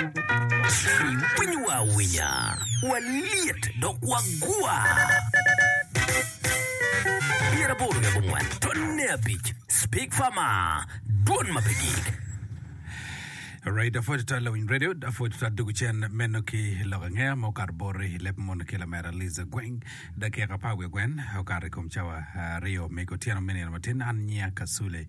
Winyo wa awinya, walyet dok wagwa. Pyera boro ki abongwen, tonne abic, Speak Farmer, dwon ma pe gik. Alright, afoyo tutwal lawiny radio, afoyo tutwal dugu cen meno ki lok angea ma okato bore i leb mono ki lamera Liza Gweng. Dakika apar wiye gwen okato i kom cawa ah, aryo me otyeno me nino matin an nyia Kasule.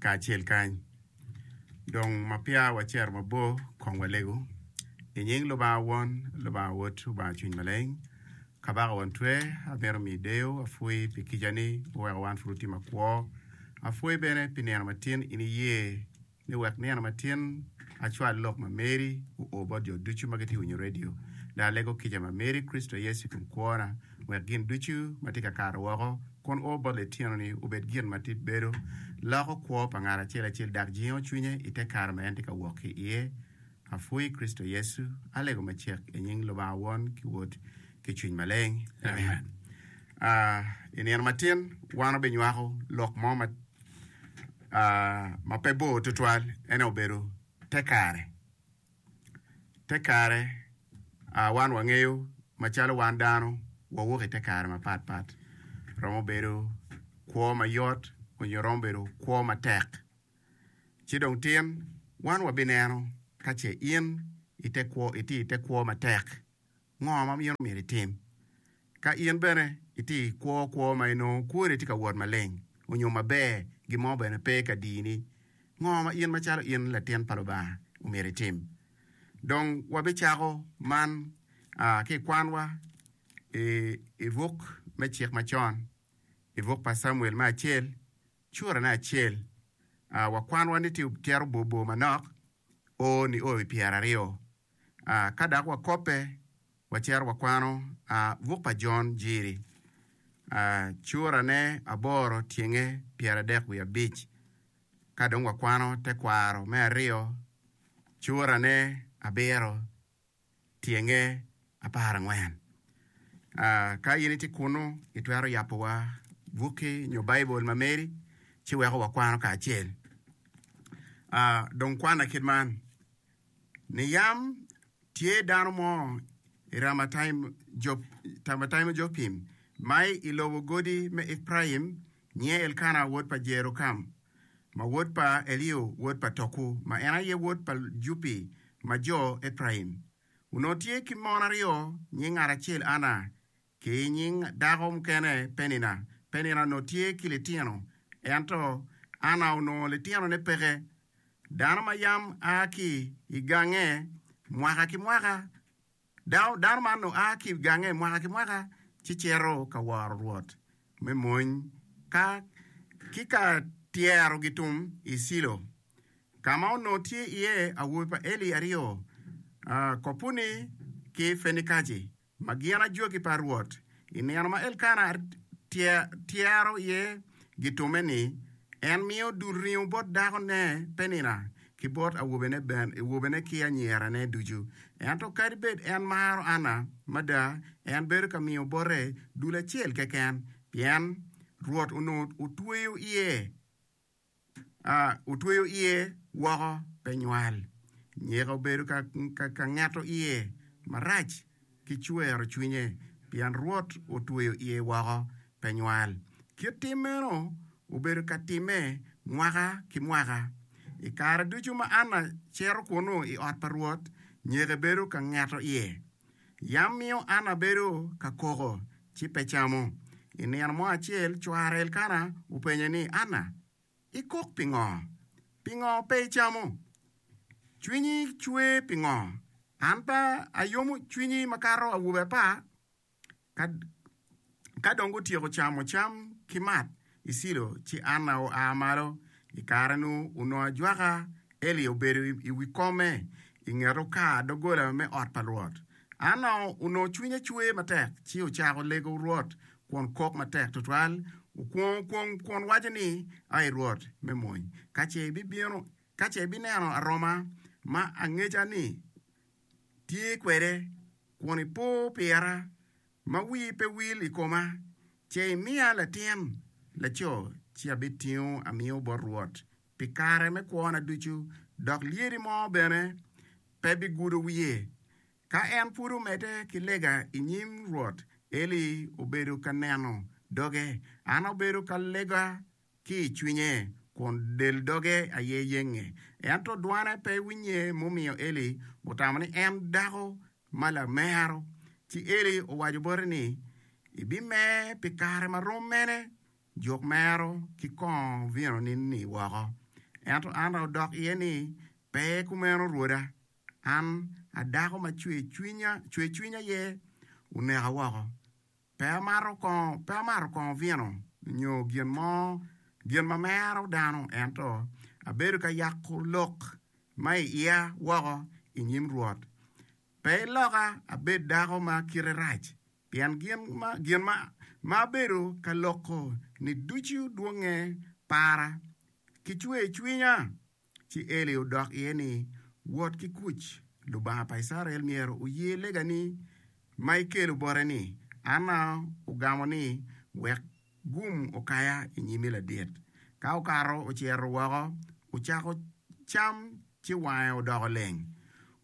kacel kany. Dong ma peya wacito mabor, kong walegu. I nying Lubanga Won, Lubanga Wod, Lubanga Cwiny Maleng, Kabaka Won Twer, amito miyi deyo. Apwoyi pi kicani, iweko wan pud watye makwo. Apwoyi bene pi nino matin in iye. ni wek nino ma tin acwal lok ma Mary oo bot jo ducu ma gitye ka winyo redio. Dong alego kica ma Mary i Kricito Yecu i kom kwona, wek gin ducu ma tye ka kato woko kun oo bot litino-ni obed gin ma tip bedo loko kwo pa ngat acel acel dok jingo cwinye i te kare ma en tye ka wok ki iye. Apwony i Kricito Yecu, alego macek i nying Lubanga Won ki Wod ki Cwiny Maleng. Amen. I nino matin wan obinywako lok mo ma ma pe bor tutwal, ene obedo te kare. Te kare wan wangeyo macalo wan dano wawok i te kare mapat pat, romo bedo kwo mayot onyo romo bedo kwo matek. Ci dong tin, wan wabineno ka ce in itye i te kwo matek, ngo ma in omyero itim. Ka in bene itye i kwo kwo ma inongo kwoni tye ka wot maleng onyo maber, gin mo bene pe ka dini, ngo ma in macalo in latin pa Lubanga omyero itim? Dong wabicako man ki i kwanwa i buk me Cik Macon, i buk pa Camuel me acel, Curane acel, a wakwanowa ni tye otyero bor bor manok, o ni o i pyera aryo. A ka dok wakope, wacito wakwano a buk pa Jon Jiri, a curane aboro tyenge pyeradek wiye abic. Ka dong wakwano tekwaro me aryo, curane abiro. tyenge apar angwen. Ka in itye kunnu, itwero yabowa bukki nyo Baibul ma meri ci weko wakwano kacel. Dong kwana kit man, Ni yam tye dano mo i Ramathaim-jopim ma i lobo godi me Epraim, Nyinge Elkana wod pa Jerokam, ma wod pa Eliu wod pa Toku, ma en aye wod pa Jupi ma jo Epraim. Onongo tye ki mon aryo, nying ngat acel Ana, ki nying dako mukene Penina. Penina onongo tye ki litino, ento Ana onongo litinone peke. Dano ma yam a ki i gange mwaka ki mwaka Dano man oa ki i gange mwaka ki mwaka ci cito ka woro Rwot me mony ki ka tyero gitum i Cilo, ka ma onongo tye iye awobe pa Eli aryo, Kopuni ki Fenikajci, ma gin ajoki pa Rwot I nino ma Elkana tyero iye gitume ni, En miyo dul ringo bot dakone Penina ki bot awobene ki anyirane ducu. Ento kadi bed en maro Anna mada, en bedo ka miyo bote dul acel keken, pien Rwot onongo otweyo iye. otweyo iye woko pe nywal, nyeka obedo ka ngeto iye marac ki cwero cwinye pien Rwot otweyo iye woko pe nywal. Kit tim meno obedo ka timme mwaka ki mwaka. I kare ducu ma Anna cito kunnu i ot pa Rwot, nyeke bedo ka ngeto iye. Yam miyo an abedo ka koko, ci pe camo. I nino mo acel, cware Elkana openye ni, Anna, ikok pingo? Pingo pe icamo? Cwinyi cwer pingo? An pe ayomo cwinyi makato awobe apar? Ka, ka dong gutyeko camo cam ki mat i Cilo, ci Anna oa malo. I kare-nu, onongo ajwaka Eli obedo i, i wi kome i nget okar doggola me ot pa Rwot. Anna onongo cwinye cwer matek, ci ocako lego Rwot kun kok matek twatwal, okwongo kwong kun waco ni, Ai Rwot me mony, ka ce ibibino, ka ce ibineno aroma ma angeca-ni! tye kwede kun ipo pira ma wii pe wil i koma, ce imiya latin laco, ci abitingo amio bot Rwot pi kare me kwona ducu, dok lyedi mo bene pe bigudo wie. Ka en pud omedde ki lega i nyim Rwot, Eli obedo ka neno doge, an abedo ka lega ki i cwinye, kun del doge aye yenge. Ento dwane pe winye mumiyo Eli otamo ni en dako ma lamero. Ci Eli owaco bote ni, Ibimer pi kare ma rom mene? Juk mero ki kongo vinoni-ni woko. Ento Anna odok iye ni, Pe kumeno rwoda, an a dako ma cwercwiny aye oneka woko. Pe amato kongo, pe amato kongo vino nyo gin mo, gin ma mero dano, ento abedo ka yako lok ma i iya woko i nyim Rwot. Pe iloka abed dako ma kite rac, pien gin ma abedo ka loko-ni ducu dwonge para, ki cwer cwinya Ci Eli odok iye ni, Wot ki kuc, Lubanga pa Icrael myero oye legani ma ikelo bote-ni. Anna ogamo ni, Wek gum okaya i nyimi ladit. Ka okato ociro woko, ocako cam ci wange odoko leng.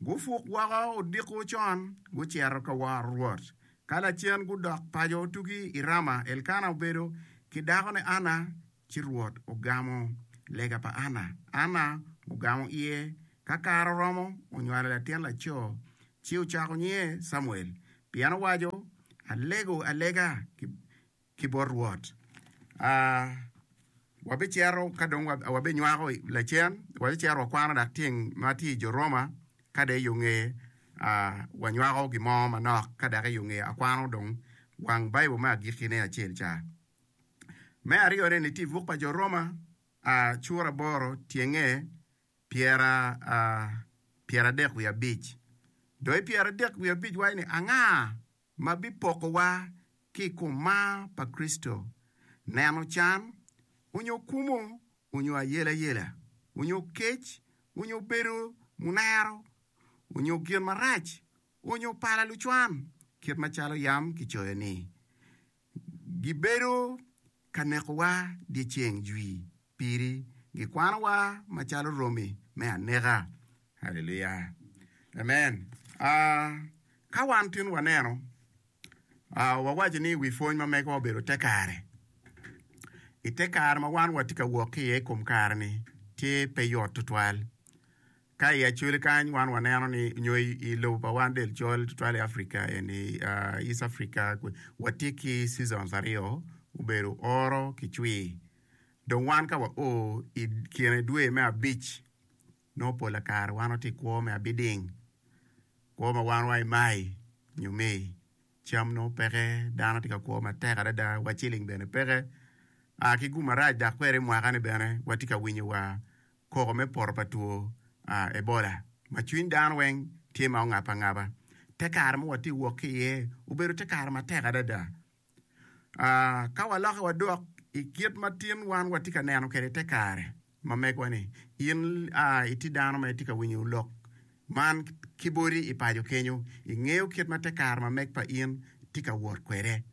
Gupuk woko odiko con, gucito ka woro Rwot. Ka lacen gudok paco tugi i Rama, Elkana obedo ki dakone Anna Ci Rwot ogamo lega pa Anna. Anna ogamo iye. Ka kare oromo, onywalo latin laco, ci ocako nyinge Camuel, pien owaco, Alego alega ki bot Rwot. A Wabicito ka dong wabenywako lacen, wabicito wakwano dok tyeng ma tye i jo Roma, ka dong i yo nge a wanywako gin mo manok, ka dok i yo nge akwano dong wang Baibul me agikkine acel ca. Me aryo ne ni ti buk pa jo Roma a cura aboro tyenge pyera a pyera adek wiye abic do i pyera adek wiye abic waco ni anga ma bi poko wa ki i kom mar pa Kricito, neno can, onyo kumo, onyo ayela yela, onyo kec, onyo bedo munero, onyo gin marac, onyo pala lucwan, kit ma calo yam ki coyo ni. Gibedo ka nekowa dyeceng jwi piri, gikwanowa macalo romi me aneka. Haleluya! Amen. Aa, ka wan tin waneno, aa, wawaco ni wi pwony ma megowa obedo te kare. I te kare ma wan watye ka wok ki iye i kom kare-ni, tye pe yot tutwal. Ka i Acholi kany wan waneno ni nyo i lobo pa wan del col tutwal i Africa eni East Africa watye ki seasons aryo obedo oro ki cwir dong wan ka wa o i kine dwe me abic nongo pol pa kare wan watye i kwo me abiding kwo ma wan wa i May nyo May cam nongo peke dano tye ka kwo matek adada wa ciling bene peke ki gum marac dok kwede i mwaka ni bene watye ka winyo wa koko me poto pa two Ebola ma cwiny dano weng tye ma ongap angaba. Te kare ma watye wok ki iye obedo te kare matek adada. Ka waloke wadok i kit ma tin wan watye ka neno kwede te kare ma megwa ni, in itye dano ma itye ka winyo lok man ki bodi i paco kenyo, ingeyo kit ma te kare ma meg pa in tye ka wot kwede.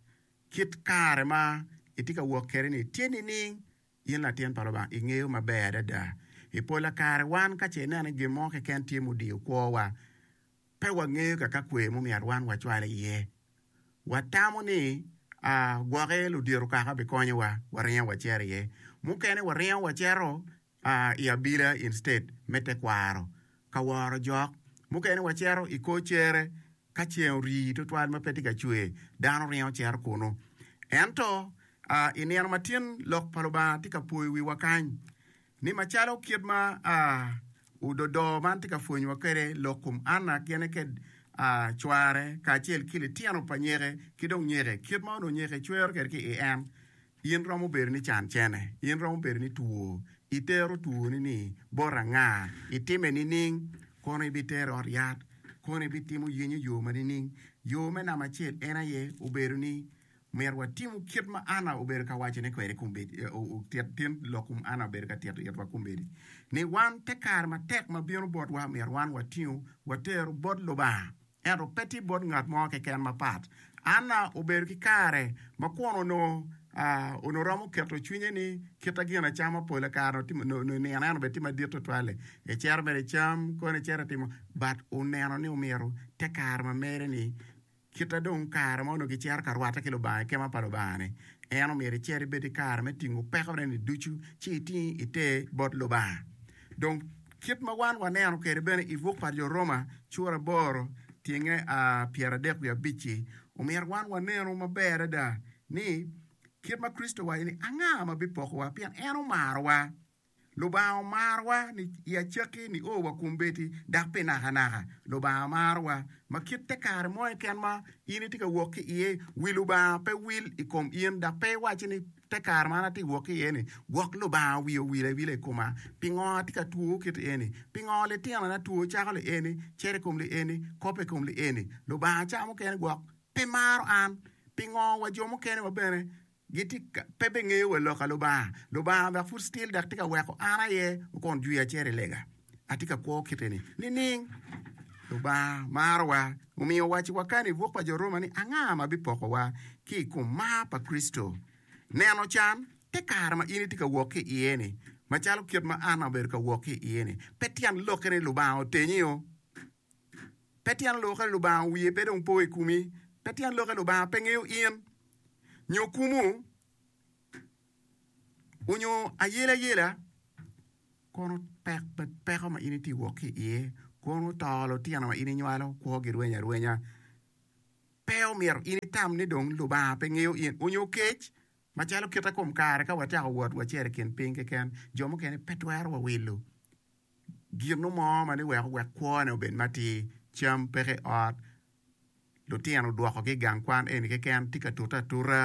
Kit kare ma itye ka wok kwede ni tye nining? In latin pa Lubanga, ingeyo maber adada. I pola kare wan ka ce ineno ni gin mo keken tye mudiyo kwowa, pe wangeyo ka ka kwer mumyero wan wacwal iye. Watamo ni, 'Aa, gwoke ludito kaka bikonyowa, waringo wacito iye. Mukene waringo wacito, aa, i abila instead me tekwaro. ka woro jok. Mukene wacito i kor cere ka ceng orii tutwal ma pe tye ka cwer, dano ringo cito kunnu. Ento, i nino ma tin Lok pa Lubanga tye ka poyo wiwa kany ni macalo kit ma ododo man tye ka pwonyowa kwede lok kom Anna gene kede cware kacel ki litino pa nyeke ki dong nyeke, kit ma onongo nyeke cwero kwede ki i en, In romo bedo ni can cene. In romo bedo ni two. Itero twoni ni bot anga? Itime nining? Kono ibitere ot yat? Kono ibitimo yenyo yo ma nining? Yo me namba acel en aye obedo ni myero watimu kit ma Anna obedo ka wacone kwede kombeddi, otit tin lok kum Anna obedo ka tito itwa kombeddi, ni wan te kare matek ma bino botwa myero wan watingu watero bot Lubanga. ento pe tye bot ngat mo keken mapat. Anna obedo ki kare ma kwon onongo romo keto cwinye ni kite gin acama pol kare onongo nino en obed tye madit tutwal-li, ecito mere ecam koni ecito etimo but oneno ni omyero te kare ma mere ni kite dong kare ma onongo gicito ka rwatte ki Lubanga i kema pa Lubanga ni en omyero ecit ebed ki kare me tingo pekone ni ducu ci iting iter bot Lubanga. Dong, kit ma wan waneno kwede bene i buk pa Jo Roma cura aboro tyenge pyeradek wiye abic-ci, omyero wan wanenu maber adada ni kit ma Kricito owaco ni, Anga ma bipokowa? Pien en omarowa. Lubanga omarowa ni i acakki nio wa kombeddi, dok pi nakanaka Lubanga marowa. Ma kit te kare mo keken ma in itye ka wok ki iye, wi Lubanga pe wil i kom in dok pe iwacci ni, Te kare ma an atye ka wok ki iye-ni, gwok Lubanga owiyo owil awila i koma. Pingo atye ka two kit eni? Pingo litinona two cako lieni, cito i kom lieni, kop i kom lieni? Lubanga ca mukene gwok pe maro an. Pingo wa jo mukene wa bene gitye ka pe bengeyo wa lok a Lubanga? Lubanga dok pud still dok tye ka weko an aye wukon jwiya cito i lega. Atye ka kwo kite ni, nining? Lubanga marowa, omiyo owaco i wakana i buk pa jo Roma ni, Anga ma bipokowa ki i kom mar pa Kricito? Neno can, te kare ma in itye ka wok ki iye-ni, macalo kit ma an abedo ka wok ki iye-ni, pe tyen lokke ni Lubanga otenyo? Pe tyen lokke ni Lubanga wiye pe dong po i komi? Pe tyen lokke ni Lubanga pe ngeyo in, nyo kumu? onyo ayela yela kono pek pe peko ma in itye ka wok ki iye kono to lutino ma in inywalo kwo gi rweny arwenya pe omyero in itam ni dong lubanga pe ngeyo in onyo kec macalo kite kom kare ka watyeko wot wacito i kin piny keken jo mukene pe twero wa wilo gino mo ma ni weko wek kwo ne obed matir cam peke i ot lutino odwoko ki i gang kwan eni keken tye ka tute atuta.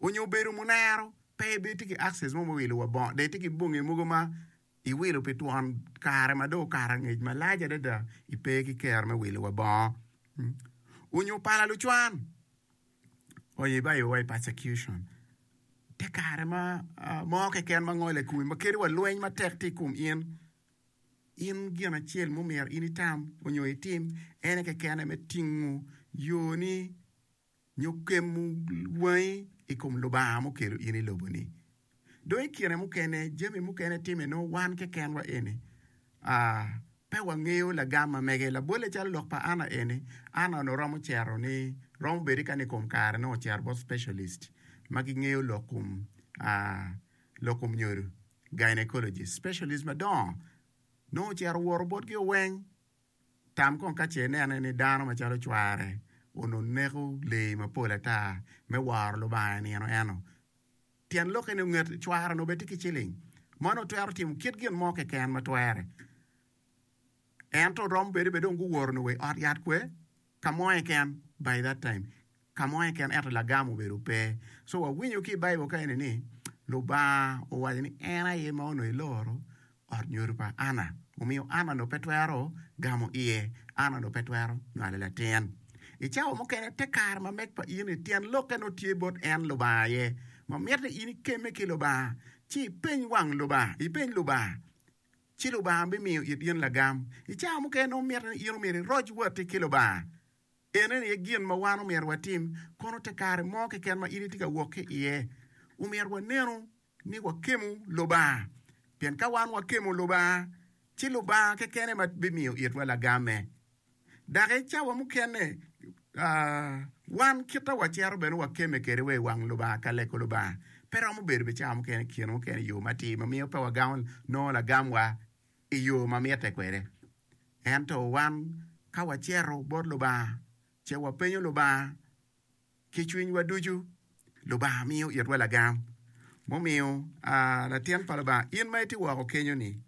onyo obedo munero pe be tye ki access mo me wilo wa bongo dong itye ki bonge mogo ma iwilo pi twon kare ma dong okato angec malac adada ipe ki kero me wilo wa bongo onyo pala lucwan onyo ibayo wa i persecution te kare ma mo keken ma ngole kome ma kelo wa lweny matek tye ikom in, in gin acel ma omyero in itam onyo itim ene keken me tingo yoni. nyo kemo wangi i kom Lubanga mukelo in i lobo-ni. Dong i kine mukene, jami mukene timme nongo wan kekenwa eni pe wangeyo lagam ma mege. Labolle calo lok pa Anna eni, Anna onongo romo cito ni, romo bedo kani i kom kare nongo ocito bot specialist ma gingeyo lok kom lok kom nyodo, gynaecologist. Specialist madongo nongo ocito owoto botgi oweng. Tam kong ka ce inene ni dano macalo cware onongo neko lee mapol ata me woro Lubanga i nino eno. Tyen lokke ni onget cware onongo bene tye ki ciling. Mano otwero timo kit gin mo keken ma twere. Ento romo bedo bene dong guworo onongo wa i ot yat kwe Ka mo keken, by that time, ka mo keken ento lagam obedo pe. So wawinyo ki i Bible ka eni ni Lubanga owaco ni en aye ma onongo eloro ot nyodo pa Anna, omiyo Anna onongo pe twero gamo iye, Anna onongo pe twero nywalo latin. I cawa mukene, te kare ma meg pa in ni tyen lokke nongo tye bot en Lubanga aye, ma mitte in ikemme ki Lubanga, ci ipeny wang Lubanga, ipeny Lubanga ci Lubanga bimiyo it in lagam. I cawa mukene nongo mitte ni in omyero iroc watti ki Lubanga. Eneni aye gin ma wan omyero watim. Kono te kare mo keken ma in itye ka wok ki iye, omyero wanenu ni wakemo Lubanga. Pien ka wan wakemo Lubanga, ci Lubanga kekene ema bimiyo itwa lagamme. Dok i cawa mukene, wan kite wacito bene wakemme kede wa i wang Lubanga ka leko Lubanga. Pe romo bedo bene cawa mukene i kine mukene yo matir ma miyo pe wagamo nongo lagamwa i yo ma mitte kwede. Ento wan ka wacito bot Lubanga ce wapenyo Lubanga ki cwinywa ducu, Lubanga miyo itwa lagam. Mumiyo, latin pa Lubanga, in ma itye woko kenyo-ni,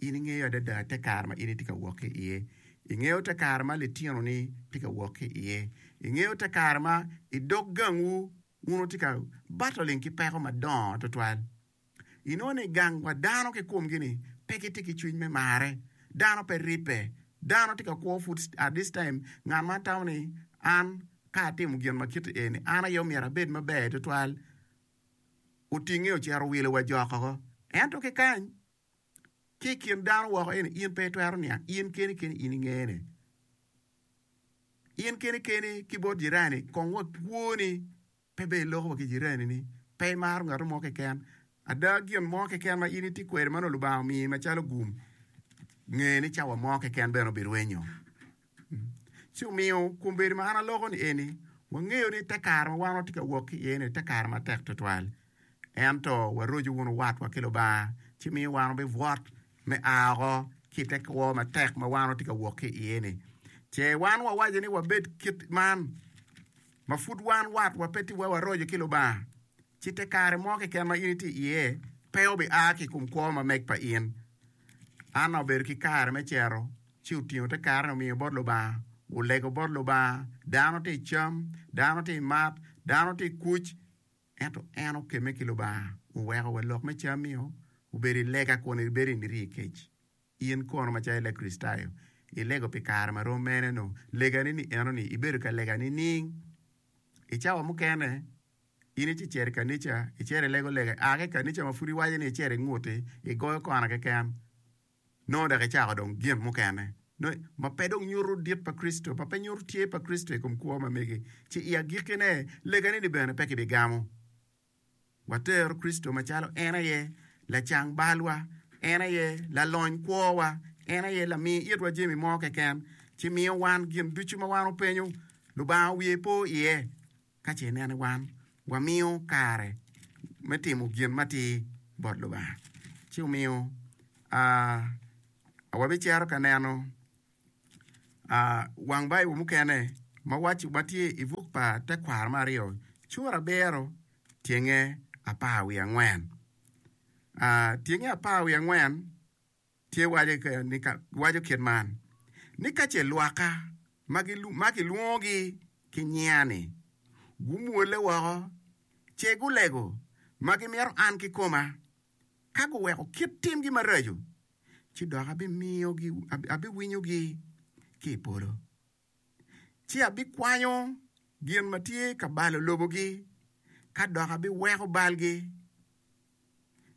In ingeyo adada te kare ma in itye ka wok ki iye. Ingeyo te kare ma litinoni tye ka wok ki iye. Ingeyo te kare ma i dog gangwu wun wutye ka battling ki peko madongo tutwal. Inongo ni gang wa dano kikumgi-ni pe gitye ki cwiny me marre. Dano pe ribbe. Dano tye ka kwo pud at this time ngat ma tamo ni an ka atimo gin ma kit eni an aye omyero abed maber tutwal. Otinge ocito owilo wa jokoko. Ento ki kany ki i kin dano woko eni in pe itwero niang in keni keni in ingene in keni keni ki bot jirani kong wa kwoni pe ber iloko wa ki jirani ni pe imaro ngato mo keken ada gin mo keken ma in itye kwede ma nongo lubanga omiyi macalo gum ngene cawa mo keken bene obirwenyo. Ci omiyo kombeddi ma an aloko ni eni, wangeyo ni te kare ma wan watye ka wok ki iye-ni te kare matek twatwal. Ento waroco wunu watwa ki Lubanga, ci miyo wan wabibwot me a woko ki i te kwo matek ma wan watye ka wok ki iye-ni. Ce wan wawaco ni wabed kit man, ma pud wan watwa pe tye wa waroco ki Lubanga, ci te kare mo keken ma in itye iye pe obi a ki i kom kwo ma meg pa in. Anna obedo ki kare me cero. Ci otingo te karane omiyo bot Lubanga, olego bot Lubanga, Dano tye i cam, dano tye i mat, dano tye i kuc, ento en okemme ki Lubanga, oweko wa lok me cammi o obedo i lega kun ibedo i niriyo i kec. In kono macalo i Lakricitayo, ilego pi kare ma rom mene-nu? Legani ni enoni ibedo ka lega nining? I cawa mukene, in icecito i kanica, icito ilego lega, a ki i kanica ma pud iwaco ni icito inguti, igoyo kona keken, Nongo dok ecako dong gin mukene ma pe dong nyuto dit pa Kricito, ma pe nyuto tye pa Kricito i kom kwo ma megi, ci i agikkine, legane-ni bene pe kibigamo. Watero Kricito macalo en aye lacang balwa, en aye lalony kwowa, en aye lami itwa jami mo keken, ci miyo wan gin ducu ma wan openyo, Lubanga wiye po iye. Ka ce ineno wan wamiyo kare me timo gin matir bot Lubanga, ci omiyo wabicito ka neno wang Baibul mukene ma waco ma tye i buk pa Tekwaro me Aryo, Cura Abiro Tyenge Apar Wiye Angwen. Tyenge Apar Wiye Angwen. Tye waco kit man ni, Ka ce lwakka ma kilwongogi ki nyinga-ni gumwolle woko, ce gulego ma gimito an kikoma, ka guweko kit timgi maraco, ci dok abiwinyogi ki i polo. ci abikwanyo gin ma tye ka balo lobogi, ka dok abiweko balgi.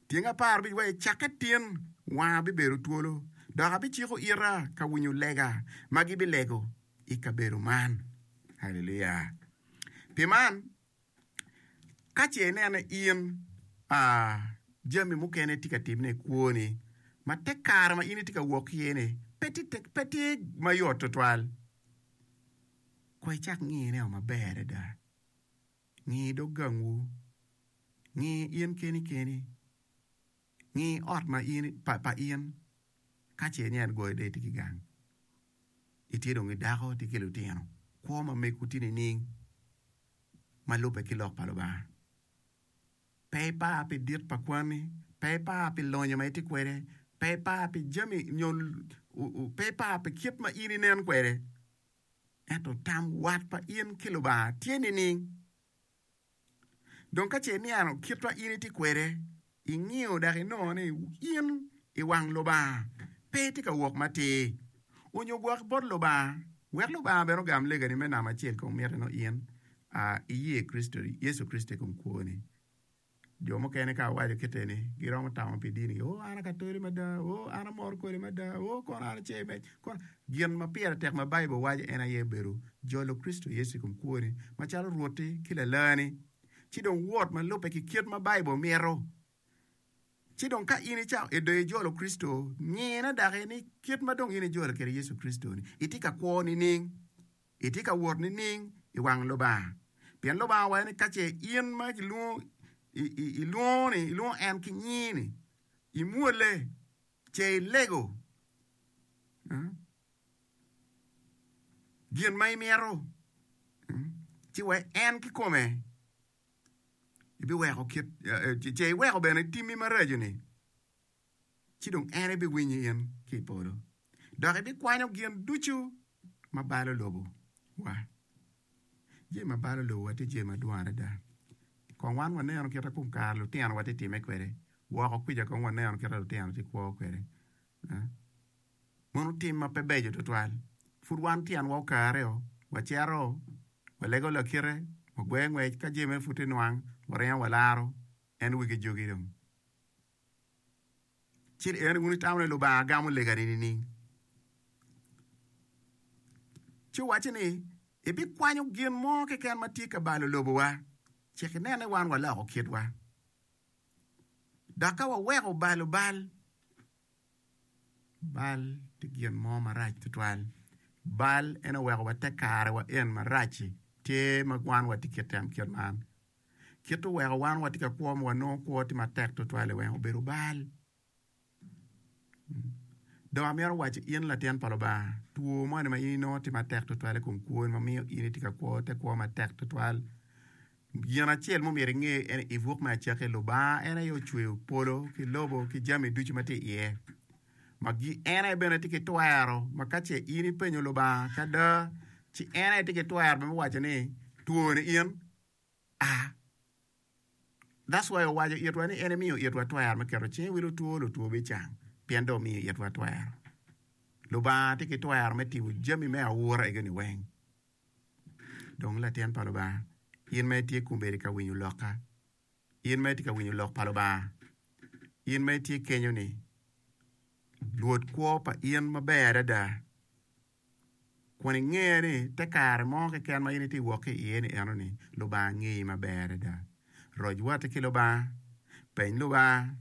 Tyeng apar obic wa, I cakke tin wanga bibedo twolo, dok abiciko ita ka winyo lega ma gibilego i kabedo man. Haleluya! Pi man, Ka ce ineno in jami mukene tye ka timme i kwoni ma te kare ma in itye ka wok iye-ni pe tye mayot tutwal, kono icak ingiyone maber adada. Ngi dog gangwu, ngi in keni keni, ngi ot ma in pa in ka ce ineno ni itye dong ki gang, itye dong ki dako, itye ki lutino, kwo ma megwu tye nining? ma lubbe ki Lok pa Lubanga. Pe ipar pi dit pa kwani, pe ipar pi lonyo ma itye kwede, pe ipar pi jami nyo pe ipar pi kit ma in inen kwede, ento tam wat pa in ki Lubanga tye nining? Dong ka ce ineno kit ma in itye kwede, Ingiyo dok inongo ni in i wang Lubanga pe itye ka wok matir, onyo gwok bot Lubanga, wek Lubanga bene ogam legani me namo acel kong miti nongo in a iye Kricito, Yecu Kricito i kom kwoni. Jo mukene ka awaco kit eni giromo tamo pi dini gi, ooh an a katoli mada, ooh an amor kodi mada, ooh kono an ace me kono. Gin ma pire tek ma Baibul waco en aye bedo jolo Kricito Yecu i kom kwoni macalo Rwotti ki Lalani ci dong wot ma lubbe ki kit ma Baibul mito. Ci dong ka in icako edo ijolo Kricito, ngine daki ni kit ma dong in ijolo kwede Yecu Kricito-ni, itye ka kwo nining? Itye ka wot nining i wang Lubanga? Pien Lubanga owaco ni ka ce in ma kilwongo ilwongo-ni, ilwongo en ki nyinge-ni, imwolle, ce ilego. gin ma imito ci wek en kikome ibiweko kit ce iweko bene timmi maraco-ni ci dong en ebiwinyo in ki i polo dok ibikwanyo gin ducu ma balo lobowa. Jami ma balo lobowa tye jami madwong adada kong wan waneno kit ma kong kare lutinowa tye timme kwede woko kwica kong waneno kit ma lutino tye kwo kwede. Meno tim ma pe beco tutwal. Pud wan tyenwa okaareo, wacito, walego lakite, wagweyo ngwec, ka jami meno pud tye nwang, waringo walaro en wigi jogi dong. Ci en wun itamo ni Lubanga gamo legani nining? Ci wacci ni ibikwanyo gin mo keken ma tye ka balo lobowa, cik inen ni wan waloko kitwa, dok ka waweko balo bal Bal tye gin mo marac tutwal, bal en aye weko wate kare wa en marac-ci tye ma wan watye ki kite kit man, kite oweko wan watye ka kwo ma wanongo kwo tye matek tutwal i weng obedo bal, dong amito waco in latin pa Lubanga two moni ma in inongo tye matek tutwal i kom kwoni ma miyo in itye ka kwo te kwo matek tutwal. Gin acel ma omyero inge en i buk me acakki, Lubanga en aye ocweyo polo ki lobo ki jami ducu ma tye iye. Ma en aye bene tye ki twero ma ka ce in ipenyo Lubanga ki ada, ci en aye tye ki twero bene me waco ni two ni in a. That's why owaco itwa ni en emiyo itwa twero me keto cinge i wi lutwo, lutwo bicang pien dong omiyo itwa twero. Lubanga tye ki twero me timo jami me aura egoni weng. Dong latin pa Lubanga, in ma itye kong bedo ka winyo lokka, in ma itye ka winyo lok pa Lubanga, in ma itye kenyo ni, Rwot kwo pa in maber adada, kun inge ni te kare mo keken ma in itye ka wok ki iye ni enoni Lubanga ngeyi maber adada. Roc watti ki Lubanga, peny Lubanga,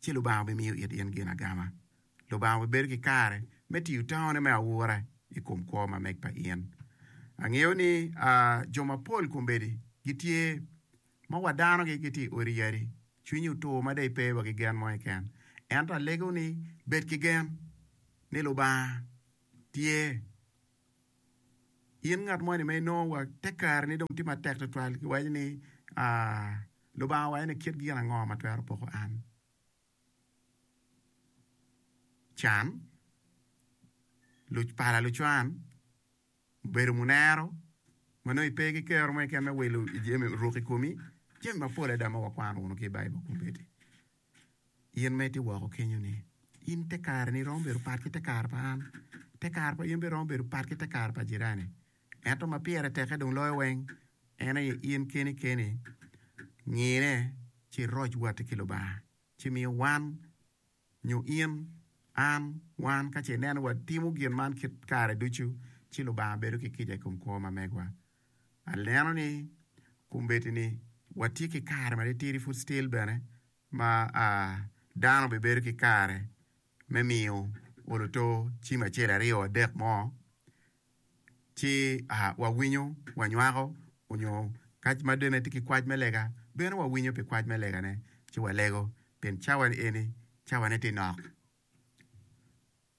ci Lubanga obimiyo it in gin agama. Lubanga obibedo ki kare me tiyo tangone me aura i kom kwo ma meg pa in. Angeyo ni jo mapol kombeddi gitye ma wa danogi gitye i odi yadi, cwinyi otur ma dei pe wa ki gen mo keken. Ento alego ni bed ki gen ni Lubanga tye. In ngat moni ma inongo wa te kare ni dong tye matek tutwal ki waci ni Lubanga owaco ni kit gin ango ma twero poko an? Can, pala lucwan, bedo munero ma nongo ipe ki kero mo keken me wilo jami oruk i komi, jami mapol adada ma wakwano wunu ki i Baibul kombeddi. In ma itye woko kenyo-ni, in te kareni romo bedo pat ki te kare pa an, te kare pa in bene romo bedo pat ki te kare pa jirani. Ento ma pire teke dong loyo weng en aye in keni keni ngine ci iroc watti ki Lubanga, ci mi wan, nyo in, an, wan ka ce ineno watimo gin man kit kare ducu, ci Lubanga bedo ki kica i kom kwo ma megwa. aneno ni kombeddi ni watye ki kare ma titidi pud still bene ma dano bibedo ki kare me miyo olo to cim acel aryo adek mo ci wawinyo wanywako nyo kac ma dong en tye ki kwac me lega bino wawinyo pi kwac me lega ne ci walego pien cawa ni eni cawa ne tye nok.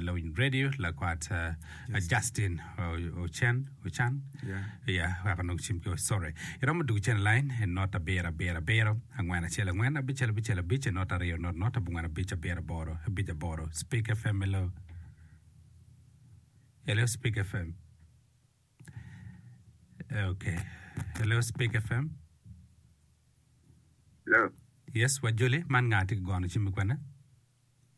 lawiny redio lakwat Justin Ocen Ocan ya weko nongo cim ki sorry iromo dwogo cen line e not abiro abiro abiro angwen acel angwen abicel abicel abic e not aryo not not abongwen abic abiro aboro abic aboro Speak FM hello hello Speak FM okay hello Speak FM Hello. yes wajoli man nga tye ki gono cim kwene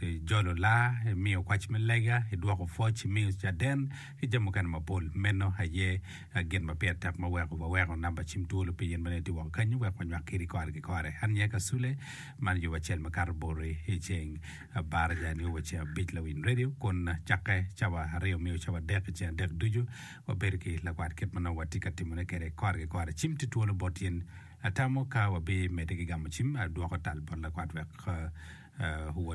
ijolo laa, imiyo kwac me lega, idwoko pwoc, imiyo caden, ki jami mukene mapol. Meno aye gin ma pire tek ma weko waweko namba cim twolo pi in ma nongo itye woko kenyu wek wanywak kadi kore ki kore. An aye Kasule, man yo acel makato Boti i ceng Baraja nio wa ceng abic Lawiny Radio kun cakke cawa aryo miyo cawa adek i ceng adek ducu wabedo ki lakwat kit ma nongo watye ka timone kwede kore ki kore. Cim tye twolo bot in. Atamo ka wabimede ki gamo cim, adwoko tal bot lakwat wek owot.